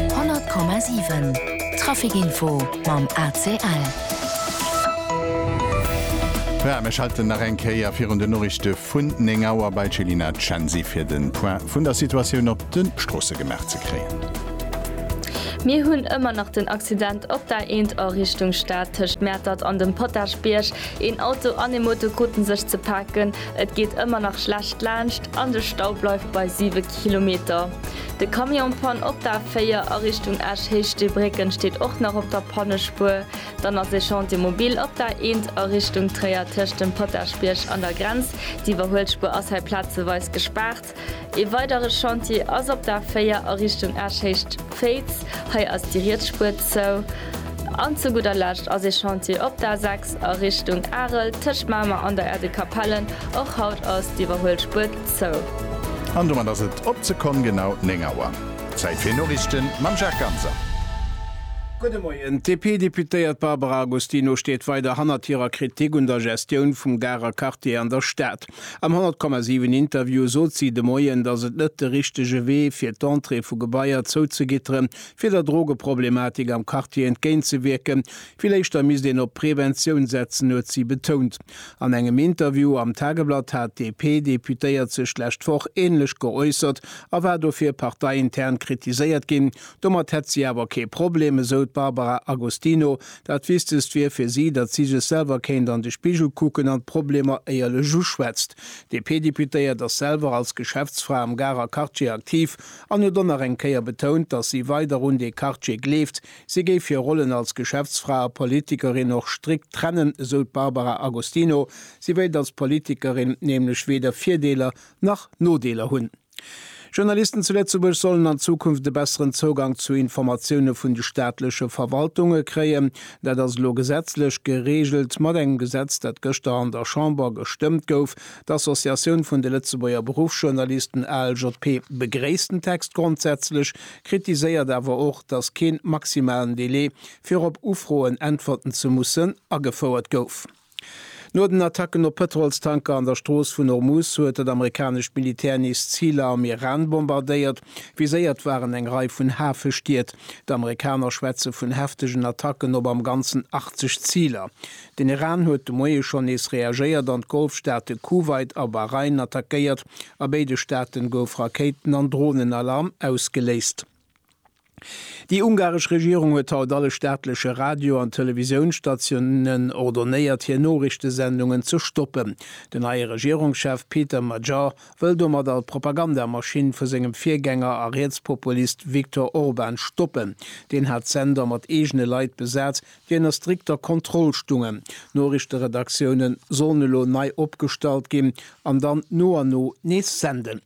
100,7 Traficinfo mam ACL. Voilà, mir schalten nach eng Kéier virun den Noriichte vun 9 Auer bei d'Céline Censi fir de Point vun der Situatioun op de Stroosse gemaach ze kréien. Mir hunn ëmmer nach den Accident op der A1 a Richtung Stad tëscht Mäertert an dem Potagebierg. Een Auto an ee Moto kruten sech ze paken. Et geet ëmmer nach schlecht laanscht an de Stau bleift bei 7 Kilometer. De Camion Panne op der A4 a Richtung Esch Héischteebrécken steet och nach op der Pannespuer. Dann ass ee Chantier Mobil op der A1 a Richtung Tréier tëscht dem Potaschbierg an der Grenz. D'Iwwerhuelspuer ass hei plazeweis gespaart. Ee weidere Chantier ass op der A4 a Richtung Esch-Héicht Féiz. Hei ass déi riets Spuer zou. An zu gudder Lescht ass ee Chantier op der A6 a Richtung Arel tëscht Mamer an der Aire de Capellen. Och haut ass d'Iwwerhuelspuer zou. An domat ass et op d'Sekonn genau 9 Auer. Zäit fir Noriichten mam Jacques Ganser. Gudde Moien. D'DP-Deputéiert Barbara Agostino steet weider hannert hirer Kritik un der Gestioun vum Garer Quartier an der Stad. Am 100, 7 Interview sot si de Moien, datt et net de richtege Wee fir d'Entrée vu Gebaier zouzegitteren, fir der Drogeproblematik am Quartier entgéint ze wierken. Vill éischter misst een op Preventioun setzen, huet si betount. An engem Interview am Tageblatt hat d'DP-Deputéiert sech d'lescht Woch änlech geäussert a war dofir parteiintern kritiséiert ginn. Domat hätt si awer kee Problem, esou d'Barbara Agostino, Dat Wichtegst wier fir si, datt si sech selwer kéint an de Spigel kucken an d'Problemer éierlech uschwätzt. D'DP-Deputéiert ass selwer als Geschäftsfra am Garer Quartier aktiv an huet och nach eng Kéier betount, datt si weider un dee Quartier gleeft. Si géif hir Rollen als Geschäftsfra a Politikerin och strikt trennen, esou d'Barbara Agostino. Si wéilt als Politikerin nämlech weder Virdeeler nach Nodeeler hunn. Journalisten zu Lëtzebuerg sollen an Zukunft e besseren Zougang zu Informatioune vun de staatleche Verwaltunge kréien. Dat ass elo gesetzlech gereegelt mat engem Gesetz, dat gëschter an der Chamber gestëmmt gouf. D'Associatioun vun de Lëtzebuerger Beruffsjournalisten, ALJP, begréisst den Text grondsätzlech, kritiséiert awer och, datt kee maximalen Delai, fir op Ufroen äntwerten ze mussen, agefouert gouf. No den Attacken op Pëtrolstanker an der Strooss vun Hormuz huet dat amerikanescht Militär nees Ziler am Iran bombardéiert. Viséiert waren eng Rei vun Hafestied. D'Amerikaner schwätze vun heftegen Attacken op am Ganzen 80 Ziler. Den Iran huet de Moie schonn nees reagéiert an d'Golfstaate Kuwait a Bahrain attackéiert. A béide Staate gouf Rakéiten an Dronenalarm ausgeléist. Déi ungaresch Regierung huet haut alle staatleche Radio an Televisiounsstatiounen ordonéiert, hir Noriichtesendungen ze stoppen. Den neie Regierungschef Péter Magyar wëll domat all Propagandamaschinn vu sengem Virgänger a Rietspopulist Viktor Orban stoppen. Deen hat d'Sender mat eegene Leit besat, déi ënner strikter Kontroll stungen. Noriichteredaktiounen sollen elo nei opgestallt ginn an dann no an no nees senden.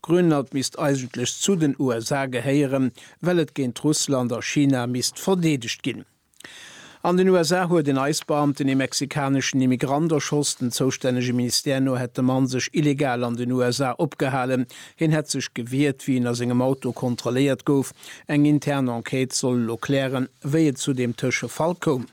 Grönland misst eigentlech zu den USA gehéieren, well et géint Russland a China misst verdeedegt ginn. An den USA huet en Ice-Beamten ee mexikaneschen Immigrant erschoss. Den zoustännege Ministère no hätt de Mann sech illegal an den USA opgehalen. Hien hätt sech gewiert, wéi en a sengem Auto kontrolléiert gouf. Eng intern Enquête soll elo klären, wéi et zu deem Tëschefall koum.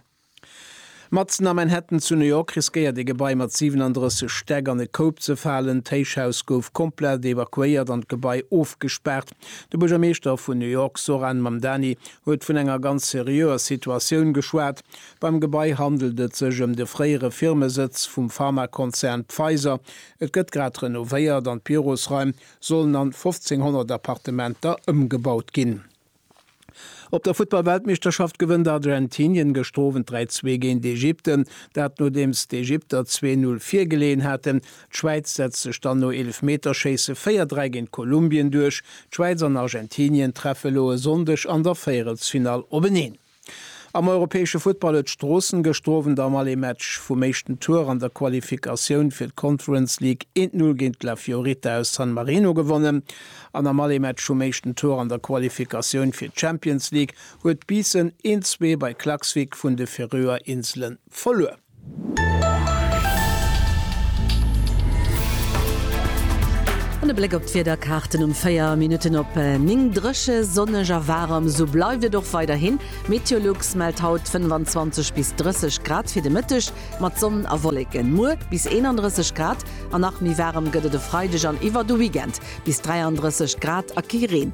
Matzen a Manhattan zu New York riskéiert ee Gebai mat 37 Stäck an e Koup ze falen. D'Héichhaus gouf komplett evakuéiert an d'Gebai ofgespaart. De Buergermeeschter vun New York Zohran Mamdani huet vun enger ganz seriöer Situatioun geschwat. Beim Gebai handelt et sech ëm de fréiere Firmesëtz vum Pharmakonzern Pfizer. Et gëtt grad renovéiert an d'Bürosraim sollen an 1.500 Appartementer ëmgebaut ginn. Op der Futtball-Weltmeeschterschaft gewënnt Argentinien gëschter Owend 3, 2 géint Ägypten, dat nodeems d'Ägypter 2, 0 virgeleeën haten. D'Schwäiz setzt sech dann no Eelefmeterschéisse 4, 3 géint Kolumbien duerch. D'Schwäiz an Argentinien treffe lo e Sonndeg an der Véierelsfinall openeen. Am europäesche Futtball huet Stroossen gëschter Owend am Allé-Match vum éischten Tour an der Qualifikatioun fir d'Conference League eent Null géint d'La Fiorita aus San Marino gewonnen an am Allé-Match vum éischten Tour an der Qualifikatioun fir d'Champions League huet Biissen eent Zwee bei Klaksvik vun de Feröer Inselen verluer. An e Bléck op d'Wiederkaarten um 4 Minutten op 9. Dréche, sonneg a waarem, esou bleift et och weiderhin. Meteolux mellt haut 25 bis 30 Grad fir de Mëtteg, mat Sonn a Wolleken. Muer bis 31 Grad an nach méi waarem gëtt et e Freideg an iwwer de Weekend, bis 33 Grad a kee Reen.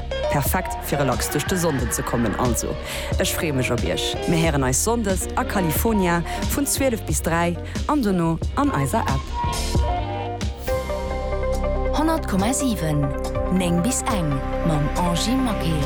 Perfekt fir relax duerch de Sonnden ze kommen. Also ech freeë mech op iech. Mir héieren eis Sonndes a California vun 12 bis 3 an dono an eiser App. 100,7 9 bis eng mam Angie Maquet.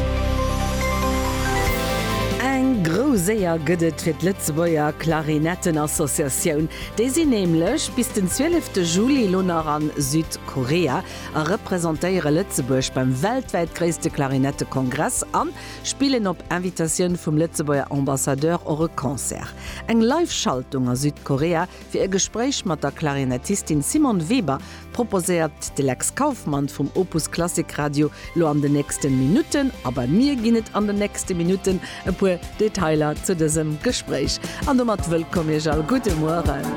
Eng grouss Éier gëtt et fir d'Lëtzebuerger Klarinettenassociatioun. Déi sinn nämlech bis den 12 Juli elo nach a Südkorea. a representéiere Lëtzebuerg beim weltwäit gréisste Klarinettekongress an spillen op Invitatioun vum Lëtzebuerger Ambassadeur och e Concert. Eng Live-Schaltung a Südkorea fir e Gespréich mat der Klarinettistin Simone Weber proposéiert d'Lex Kauffmann vum Opus Klassik Radio lo an den nächsten Minuten. A bei mir ginn et an den nächsten Minuten e puer Detailer zu dësem Gespréich. An domat wëllkomm Iech all. Gudde Mueren.